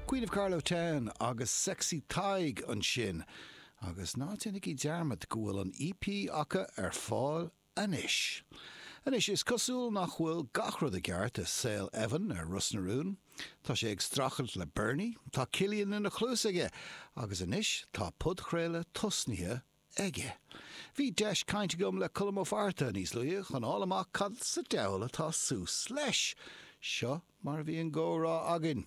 Queen of Carlow Town agus Sexy Tadhg ansin agus ná déanaigí dearmad go bhfuil an EP acu ar fáil anois. Anois, is cosúil nach bhfuil gach rud i gceart i saol Evan ar Ros na Rún. Tá sé ag strachailt le Bernie, tá Cillian ina chluas aige agus anois tá podchraoladh tosnaithe aige. Bhí deis caint agam le Colm Ó Fátharta níos luaithe chun fháil amach cad sa deabhal atá suas leis. Seo mar a bhí an gcomhrá againn.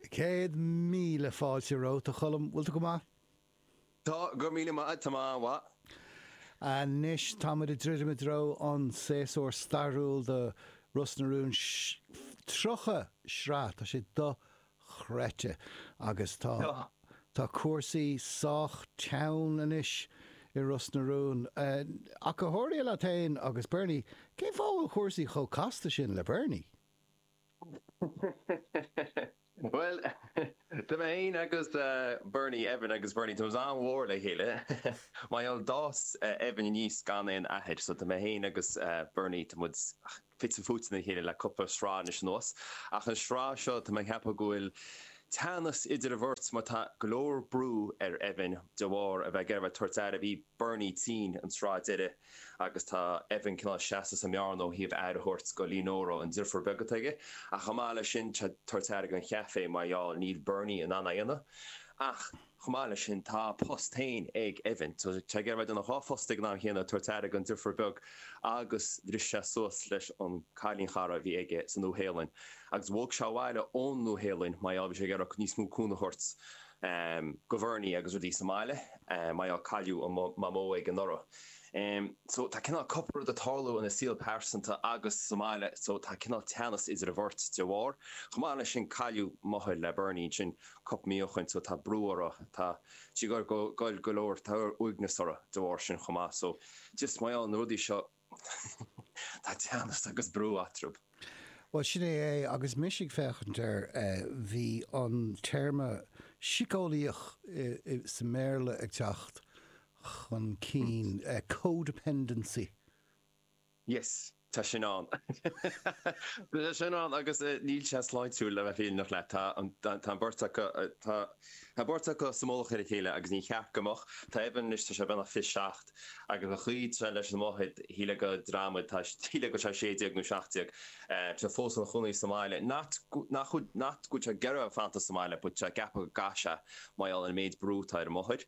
Céad míle fáilte romhat, a Cholm. Bhfuil tú go maith? Tá go míle maith, tá mé an-mhaith. Anois tá muid ag druidim i dtreo an séasúr stairiúil do Ros na Rún. 30 sraith, tá sé chreidte agus tá tá cúrsaí sách teann anois i Ros na Rún. Ach go háirithe leat féin agus Bernie, cén fáth a bhfuil cúrsaí chomh casta sin le Bernie? Bhuel tá mé féin agus Bernie Evan agus Bernie tá muid an-mhór le chéile. Mar gheall d'fhás Evan aníos gan aon athair so tá mé féin agus Bernie tá muid fite fuaite le chéile le cúpla sraith anois anuas ach an sraith seo tá mé ag ceapadh go bhfuil teannas idir an bheirt mar tá go leor brú ar Evan de bharr a bheith ag iarraidh tabhairt aire. Bhí Bernie tinn an tsraith deiridh agus tá Evan cineál seasta sa mbearna ó thaobh aire a thabhairt go Lee Nóra, an deirfiúr beag atá aige, ach chomh maith leis sin tá tabhairt aire don chaifé mar gheall níl Bernie in ann a dhéanamh ach. Chomh maith leis sin, tá a phost féin ag Evan. Tá sé ag iarraidh a bheith ina dhá phost ag an am chéanna, ag tabhairt aire don deirfiúr beag agus bhris sé suas leis an cailín chara a bhí aige sa Nua Shéalainn agus bhog sé abhaile ón Nua Shéalainn, mar gheall, bhí sé ag iarraidh níos mó cúnamh a thabhairt go Bhernie agus rudaí sa mbaile, mar gheall cailleadh an mamó aige anuraidh. So, tá cineál cúpla rud ag tarlú ina saol pearsanta agus sa mbaile, so, tá cineál teannas idir an bheirt de bharr. Chomh maith leis sin cailleadh máthair le Bernie, ansin, cúpla mí ó shin so tá brú orthu tá siad ag argáil go leor tá uaigneas orthu de bharr sin chomh maith so just mar gheall na rudaí seo tá teannas agus brú eatrab. Bhuel sin é é agus mise ag féachaint air bhí an téarma síceolaíoch sa mBéarla ag teacht chun cinn, co-dependency. Yes, tá sin ann. Tá sin ann agus níl sé sláintiúil le bheith fírinneach leat. Tá an, tá an beirt acu, tá an beirt acu sa mullach ar a chéile agus níor cheart go mbeadh. Tá Evan anois, tá sé beagnach 27 agus an chaoi atá sé leis an máthair, shílfeá go dramhaíl, tá, shílfeá go bhfuil sé 16 nó 17. Tá sé fós ina chónaí sa mbaile. Not, nach, not go bhfuil sé ag iarraidh fanacht sa mbaile but tá sé ag ceapadh go gcaithfidh sé mar gheall ar an méid brú atá ar an máthair.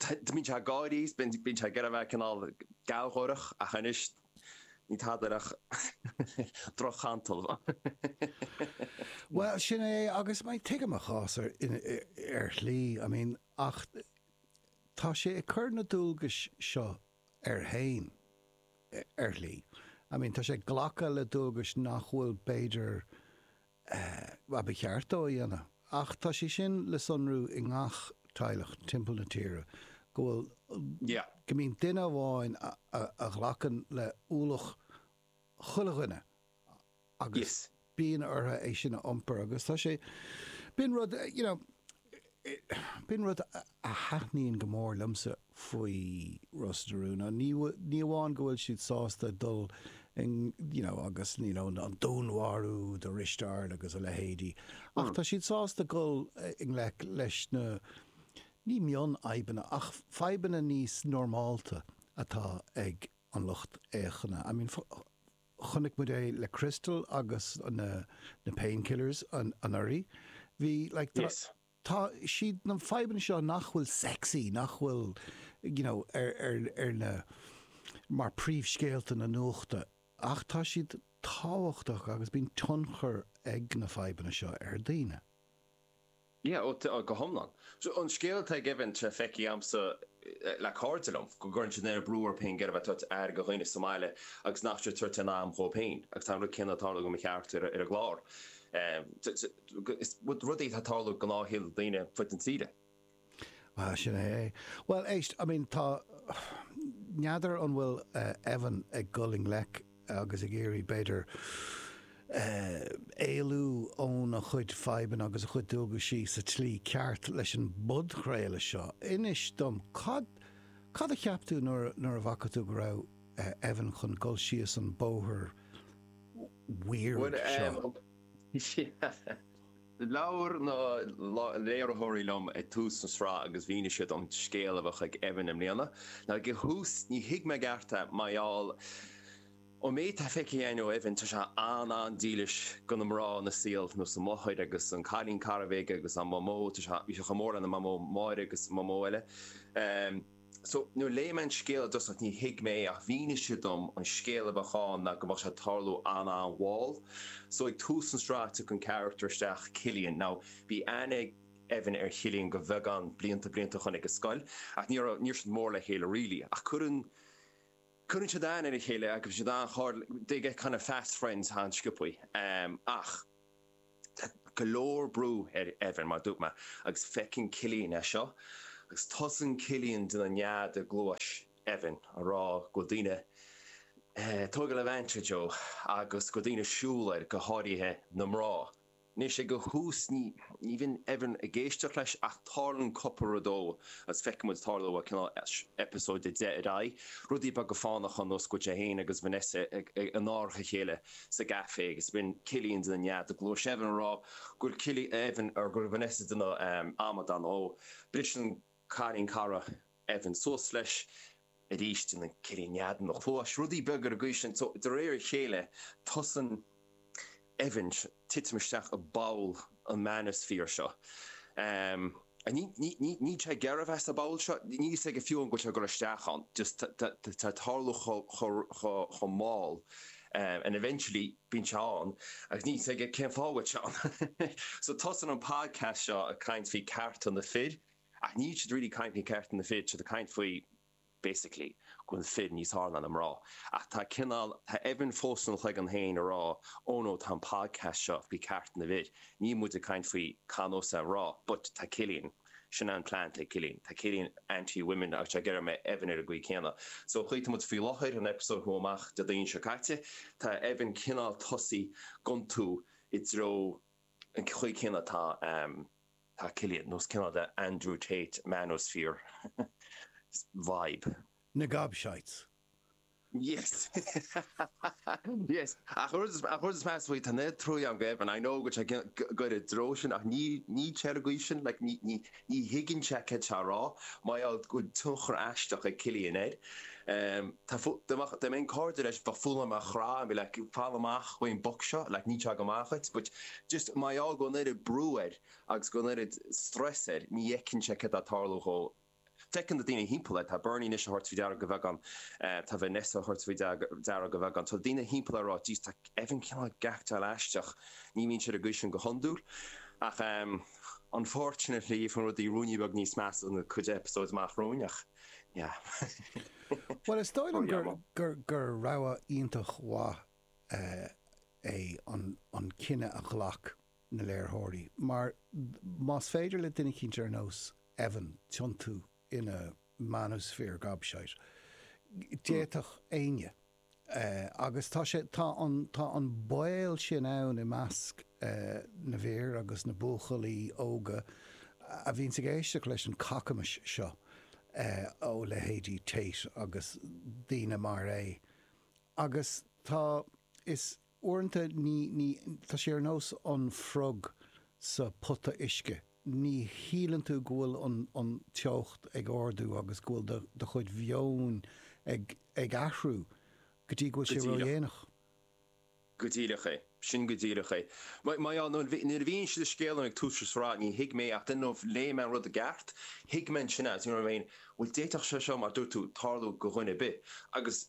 Bíonn sé ag gáirí, bíonn sé ag iarraidh a bheith cineál gealgháireach ach anois níl tada ach droch-chantal. Bhuel, sin é agus tuigim a chás ar shlí, I mean, ach tá sé ag cur na dualgais seo air fhéin ar shlí. I mean, tá sé ag glacadh le dualgais nach bhfuil b'fhéidir ba cheart dó a dhéanamh. Ach tá sé sin le sonrú i ngach teaghlach timpeall na tíre, go bhfuil, go mbíonn duine amháin a ghlacann le hualach chuile dhuine agus bíonn orthu é sin a iompar agus tá sé, bíonn rud, you know, B'in rud a thaitníonn go mór liomsa faoi Ros na Rún. Ní amháin go bhfuil siad sásta dul you know agus you know an dúnmharú de Ristéard agus a leithéidí ach tá siad sásta dul i ngleic leis na, ní mion-fhadhbanna, ach fadhbanna níos normálta atá ag an lucht féachana. I mean. Chonaic muid é le Crystal agus na Painkillers anuraidh. Bhí like tá, tá, siad na fadhbanna seo nach bhfuil sexy, nach bhfuil you know ar, ar, ar na, mar príomhscéalta na nuachta ach tá siad tábhachtach agus bíonn tionchar ag na fadhbanna seo ar daoine. Yeah, oh, go hiomlán. So, an scéal atá ag Evan tá sé feicthe agamsa le cairde liom, go gcuireann siad an-bhrú orthu féin ag iarraidh a bheith ag tabhairt aire do dhaoine sa mbaile agus nach bhfuil siad ag tabhairt aon am dhóibh féin agus tá an rud céanna ag tarlú do mo charachtar ar an gclár. Rudaí atá ag tarlú i ngnáthshaol daoine ar fud na tíre. Ah, sin é é. Bhuel, éist, I mean, tá, n'fheadar an bhfuil Evan ag dul i ngleic agus ag iarraidh, b'fhéidir, éalú óna chuid fadhbanna agus a chuid dualgais sa tslí ceart leis an bpodchraoladh seo. Inis dom, cad, cad a cheap tú nuair, nuair a bhfaca tú go raibh Evan chun dul síos an bóthar weird seo? Bhuel, yeah. Labhair na léiritheoirí liom ag tús na sraithe agus mhínigh siad an scéal a bheadh ag Evan i mbliana. Ar dtús ní thuig mé i gceart é mar gheall ar an méid atá feicthe againn ó Evan tá sé an-an-dílis do na mná ina saol nós a mháthair agus an cailín cara a bhí aige agus a mhamó tá sé chomh mór lena mhamó Máire agus a mhamó eile. So, nuair a léigh mé an scéal i dtosach ní thuig mé é ach mhínigh siad dom an scéal a bheadh ann ná go mbeadh sé ag tarlú an-an-mhall. So, ag tús an sraith tiocfaidh an carachtar isteach, Cillian. Now, bhí aithne ag Evan ar Chillian go beagán blianta, blianta ó shoin ag an scoil ach ní raibh, ní raibh siad mór le chéile really ach cuireann, cuireann siad aithne ar a chéile agus bíonn siad an-chairdiúil, they get kind of fast friends an-sciobtha. Ach. Tá go leor brú ar Evan, mar a dúirt mé, agus feiceann Cillian é seo agus tosaíonn Cillian ag déanamh nead i gcluais Evan a rá go bhfuil daoine tógtha le Laochra Joe agus go bhfuil daoine ag súil air, go háirithe na mná. Anois, ag an thús ní bhíonn Evan ag éisteacht leis ach tarlaíonn cúpla rud dó agus feiceann muid ag tarlú ó cineál eipeasóid a deich ar aghaidh, rudaí beaga fánacha ar nós go dtéann é féin agus Vanessa in árach a chéile sa gcaifé agus bíonn Cillian ag déanamh nead i gcluais Evan a rá go bhfuil Evan, er, go raibh Vanessa ag déanamh amadán dó, bhris an cailín cara Evan suas leis arís déanann Cillian nead ina chluais rudaí beag ar an gcaoi sin so de réir a chéile tosaíonn Evan ag titim isteach i bpoll an manosphere seo. Níl sé ag iarraidh a bheith sa bpoll seo, níl a fhios aige fiú an bhfuil sé ag dul isteach ann, just tá sé ag tarlú chomh mall and eventually bíonn sé ann agus níl a fhios aige cén fáth a bhfuil sé ann. So tosaíonn an podcast seo ag caint faoi cearta na fir ach níl siad really ag caint faoi cearta na fir, tá siad ag caint faoi, basically, go bhfuil fir níos fhearr ná na mná. Ach tá cineál, tá Evan fós ina chloigeann féin a rá, oh no, tá an podcast seo faoi cearta na bhfir, níl muid ag caint faoi cá nós mná, but tá Cillian, sin an plean atá ag Cillian, tá Cillian anti women agus ag iarraidh go mbeadh Evan ar an gcaoi céanna. So an chaoi a bhfuil muid faoi láthair, an eipeasóid a chuaigh amach Déardaoin seo caite, tá Evan cineál tosaithe ag iontú i dtreo an chaoi céanna atá, Tá Cillian nós cineál the Andrew Tate manosphere vibe. Na gobshites. Yes! Yes! Ach an rud an rud is measa faoi, tá neart trua agam do Evan, I know go bhfuil sé ag goil i dtreo sin ach ní ní air go bhfuil sin like ní ní ní thuigeann sé céard atá sé a rá. Mar gheall go bhfuil tionchar aisteach ag Cillian air. Em, tá fo- dá mbeadh, dá mbeinn cairde leis bheinn full on á chrá and be like, fáil amach ón mboc seo like níl sé go maith dhuit but, Just mar gheall go bhfuil an oiread brú air agus an oiread stress air, ní fheiceann sé céard atá ag tarlú dhó. Feiceann na daoine timpeall air. Tá Bernie anois ag tabhairt faoi deara de bheagán. Tá Vanessa ag tabhairt faoi deara de bheagán. Tá daoine timpeall air a rá, Jeez, tá Evan cineál ag aicteáil aisteach. Ní bhíonn sé ar an gcaoi sin go hiondúil. Ach unfortunately, faigheann rudaí ruainne beag níos measa sna cúpla episodes amach romhainn ach yeah. Bhuel, is dóigh liom gur rogha iontach mhaith é an cinneadh a ghlac na léiritheoirí mar más féidir le duine eicínt ar nós Evan tiontú ina manosphere gobshite d'fhéadfadh éinne agus tá sé, tá an, tá an baol sin ann i measc na bhfir agus na mbuachaillí óga a bhíonns ag éisteacht leis an cacamais seo ó leithéidí Tate agus daoine mar é. Agus tá, is uaireanta ní, ní, tá sé ar nós an frog sa pota uisce, ní shíleann tú go bhfuil an, an teocht ag ardú agus go bhfuil do, do chuid mheoin ag, ag athrú go dtí go bhfuil sé ródhéanach. Go díreach é. Sin go díreach é. Mar, mar, á, nuair, nuair a mhínigh siad an scéal dom ag tús an sraith ní thuig mé ach then nuair a léigh mé an rud i gceart, thuig mé ansin, you know what I mean, bhuel d'fhéadfadh sé seo, mar a dúirt tú, tarlú go dhuine ar bith. Agus.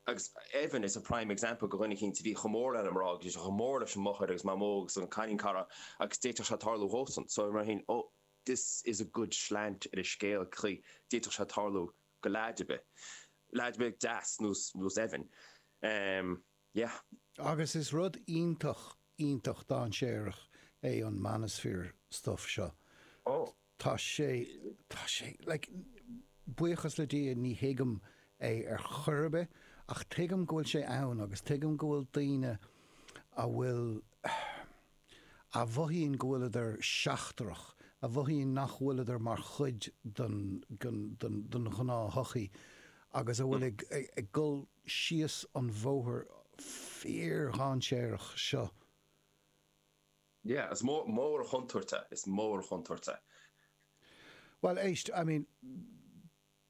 agus Evan is a prime example go dhuine eicínt a bhí chomh mór lena mná agus bhí sé chomh mór leis an máthair agus mamó agus an cailín cara agus d'fhéadfadh sé tarlú dhósan so mar sin oh this is a good slant ar an scéal chaoi d'fhéadfadh sé tarlú go leaid ar bith leaid beag deas nós nós Evan. Yeah. Agus is rud iontach, iontach dainséarach é an manosphere stuff seo. Oh. Tá sé, tá sé, like, buíochas le Dia ní thuigim é ar chor ar bith ach tuigim go bhfuil sé ann agus tuigim go bhfuil daoine a bhfuil, a mhothaíonn go bhfuileadar seachtrach, a mhothaíonn nach bhfuileadar mar chuid den ghnáthshochaí agus a bhfuil ag dul síos an bhóthar fíordhainséarach seo. Yeah, is mór an chontúirt é, is mór an chontúirt é. Bhuel, éist, I mean,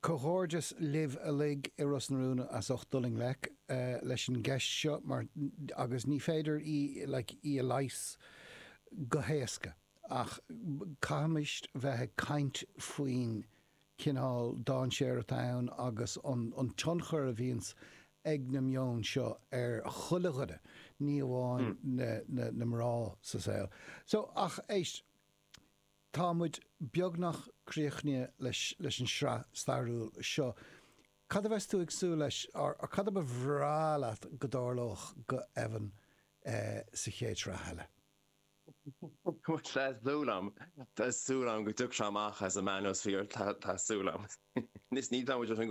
Comhghairdeas libh uilig i Ros na Rún as ucht dul i ngleic leis an gceist seo mar agus ní féidir í like í a leigheas go héasca ach caithfimis bheith ag caint faoin chineál dainséir atá ann agus an an tionchar a bhíonns ag na meoin seo ar chuile dhuine ní amháin na na na mná sa saol. So ach éist. Tá muid beagnach críochnaithe leis an sraith stairiúil seo. Cad a bheas tú ag súil leis, or cad a ba bhreá leat go dtarlódh go Evan sa chéad sraith eile? Tá súil agam, tá súil agam go dtiocfaidh sé amach as an manosphere, tá súil agam. Níos, ní, tá muid.